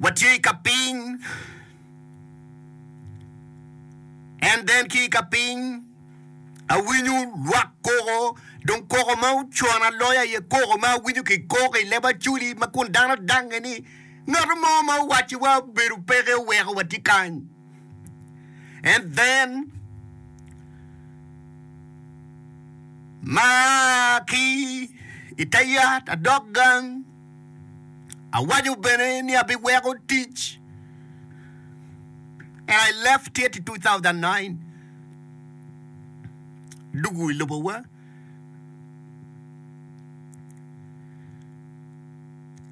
watye i ka piny, and then ki i ka piny awinyo lwak koko, dong koko ma ocuano aloya iye koko ma awinyo ki koko i leb acoli ma kun dano dange ni ngat mo ma owaci wa obedo peke oweko watye kany. And then ma ki i te yat adok gang. Awaco bene ni abiweko tic and I left it 2009 dugu i lobowa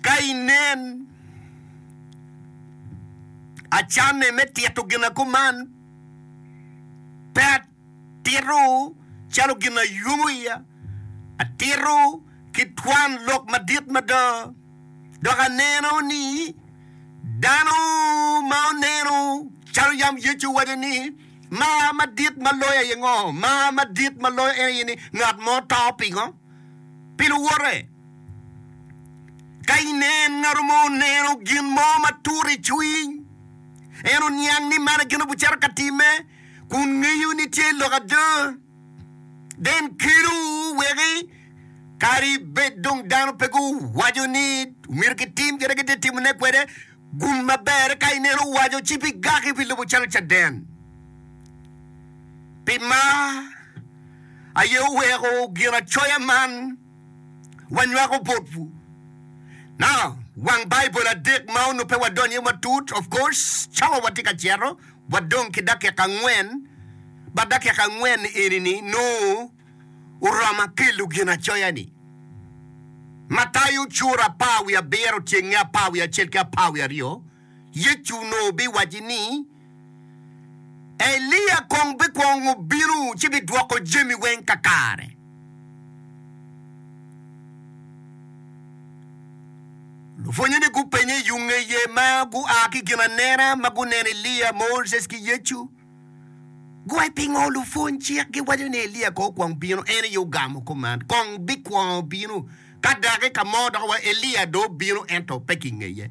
ka inen acanne me tito gina kuman pe Atito calo gin ma yomo iya, atito ki twan lok madit mada, dok aneno ni dano ma oneno calo yam Yecu owaco ni, Mar madit ma loyo aye ngo? Mar madit ma loyo en aye ni ngat mo to pingo? Pi luwote. Ka inen ngat mo oneno gin mo ma turo i cwiny, en oniang ni man gin obicito ka timme. kun ngeyo ni tye lok ada. Den kelo weke kadi bed dong dano pe guwaco ni omyero gitim kite gitye timone kwede, gum maber ka ineno owaco ci pi gaki pi lobo calo caden. Pi mar aye oweko Ginacoya man wanywako botwu. Now, wang Baibul adek ma onongo pe wadonyo iye matut, of course, cawa watye ka cito, wadong ki dakika angwen, ba dakika angwen eni-ni nongo oromo akelo Ginacoya-ni. Matayo cura apar wiye abiro tyenge apar wiye acel ki apar wiye aryo, Yecu onongo biwacci ni, Elia kong bikwongo bino ci bidwoko jami weng kakare. Lupwonnyene gupenye i yo ngeye ma gua ki i ginanena ma guneno Elia, Moses, ki Yecu. Gua pingo lupwony-cik giwaco ni Elia kong okwong bino? En aye ogamo kop man, Kong bikwongo bino ka dakika mo dok wa Elia dong bino, ento pe kingeye.